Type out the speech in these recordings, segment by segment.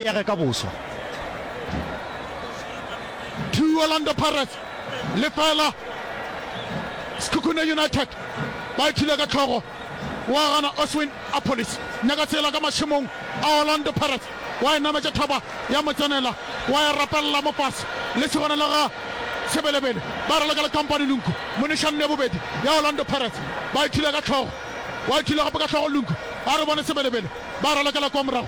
ya ge ka boswa. Two Orlando Pirates, lefela Sekhukhune United, ba ithula ka tlhogo, wa gana Oswin Appollis, nyaka tsela ka mašemong a Orlando Pirates, wa e nametša thaba ya mo tsenela, wa e rapelela mo fase, le segona le ga Sebelebele ba raloka le Company Lunku, monešanne ya bobedi ya Orlando Pirates, ba ithula ka tlhogo, wa ithula gape ka tlhogo Lunku, a re bone Sebelebele ba ralokela kwa morago.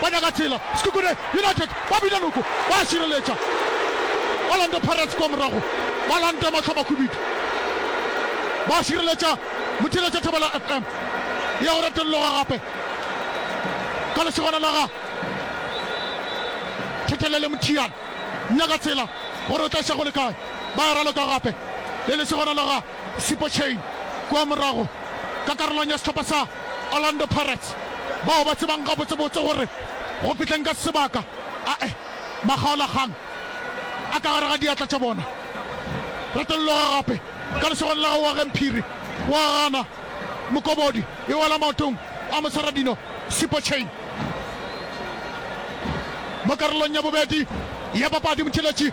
ba nyaka tsela. Sekhukhune United ba bina noko, ba a šireletša. Orlando Pirates kua morago ba lanta mahlabakhubidu, ba šireletša Mothiletša Thobela FM ya go retolloga gape ka lesogana la ga Thetelele Mothiana. Nyaka tsela gore o tla iša go le kae, ba ya raloka gape le lesogana la ga. Siphochane kua morago ka karolong ya sehlopha sa Orlando Pirates, bao ba tsebang gabotsebotse gore go fihleng ka sebaka a e makgaolakgang a ka gare ga diatla tša bona. Retologa gape ka lesogong la gago wa ge Mphiri wa gana Mokobodi e wela maotong a Mosaradino Siphochane. Mo karolong ya bobedi ya papadi, Motšheletši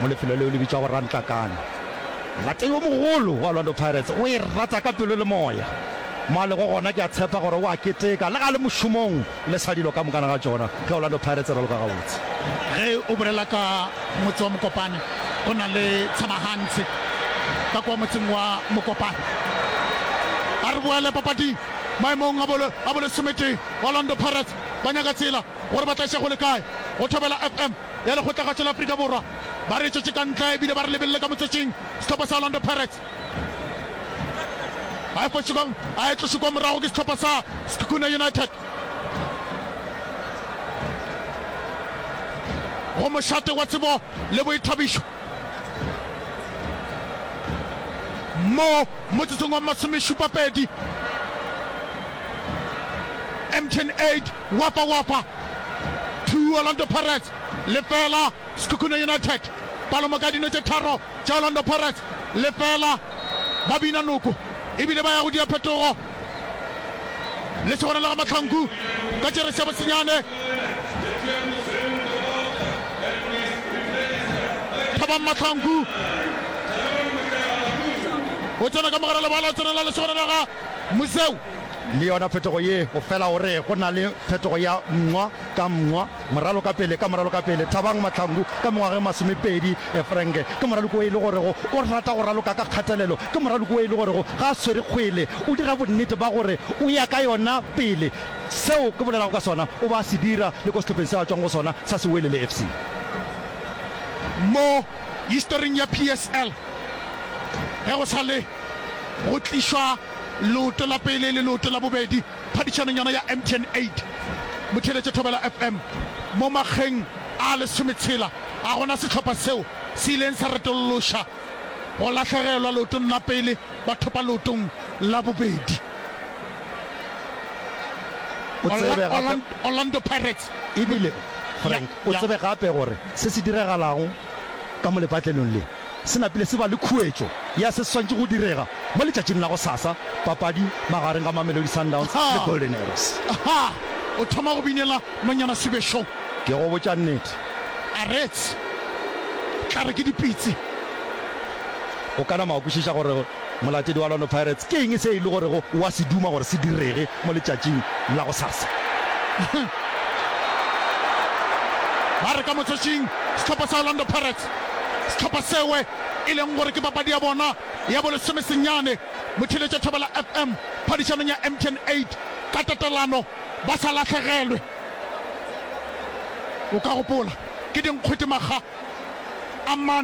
mo lefelo leo le bitšwago Rantlakane. Molato yo mogolo wa Orlando Pirates o e rata ka pelo le moya. Mo a lego gona ke a tshepa gore o a keteka le ge a le mošomong le sa dilo ka mokana ga tšona ge Orlando Pirates e raloka gabotse. Ge o bolela ka motse wa Mokopane go na le Tshebagantshe ka kwa motseng wa Mokopane. A re boele papading maemong a bolo a bolesometee. Orlando Pirates ba nyaka tsela gore ba tla iša go le kae go thobela FM. ya lekgotlagatšo la Afrika Borwa ba re tšwetše ka ntle ebile ba re lebelele ka motswetšing sehlopha sa Orlando Pirates. A efetše kong a etlošwe kwa morago ke sehlopha sa Sekhukhune United. Go mošate wa tsebo le boithabišo mo motsotsong wa masomešupapedi, MTN 8. Wapa Wapa 2 Orlando Pirates lefela Sekhukhune United palomo ka dino tše tharo tša Orlando Pirates lefela ba bina noko e bile ba ya go dia phetogo le se gona le ga Mahlangu ka tšere sebo senyane Thabang Mahlangu o tsena ka mogare lebala o tsenela le se gona le ga Museu Le yona phetogo ye, o fela o re go na le phetogo ya mngwa ka mngwa, moralo ka pele ka moralo ka pele. Thabang Mahlangu, ka mengwageng masomepedi, Frank, ke moraloki wo e le gorego o rata go raloka ka kgatelelo, ke moraloki wo e le gorego ga a swere kgwele, o dira bonnete ba gore o ya ka yona pele. Seo ke bolelago ka sona o be a se dira le ko sehlopheng seo a tšwang go sona sa Sewelele FC. Mo historing ya PSL, ge go sa le go tlišwa Leoto la pele le leoto la bobedi phadišanong yona ya MTN 8. Botheeletše Thobela FM. Mo makgeng a lesometshela ga go na sehlopha seo se ileng sa retolloša go lahlegelwa leotong la pele ba thopa leotong la bobedi. O tsebe gape, Orlando, Orlando Pirates. Ebile, Frank, o Ya, ya. tsebe gape gore se se diragalago ka mo lepatlelong le? Se napile se ba le khuetšo ya se swantše go direga mo letšatšing la gosasa, papadi magareng ga Mamelodi Sundowns le Golden Arrows. Aha! O thoma go binela nonyana sebešong. Ke go botša nnete. A reetse, Tla re ke dipitsi. O ka nama wa kwešiša gore. Molatedi wa Orlando Pirates, ke eng se e le gorego o a se duma gore se direge mo letšatšing la gosasa? Ba re ka motšošing sehlopha sa Orlando Pirates, sehlopha sewe e leng gore ke papadi ya bona ya bolesome senyane, botheletša Thobela FM phadišanong ya MTN eight ka tatelano ba sa lahlegelwe. O ka gopola, ke dinkgwete makga a mane.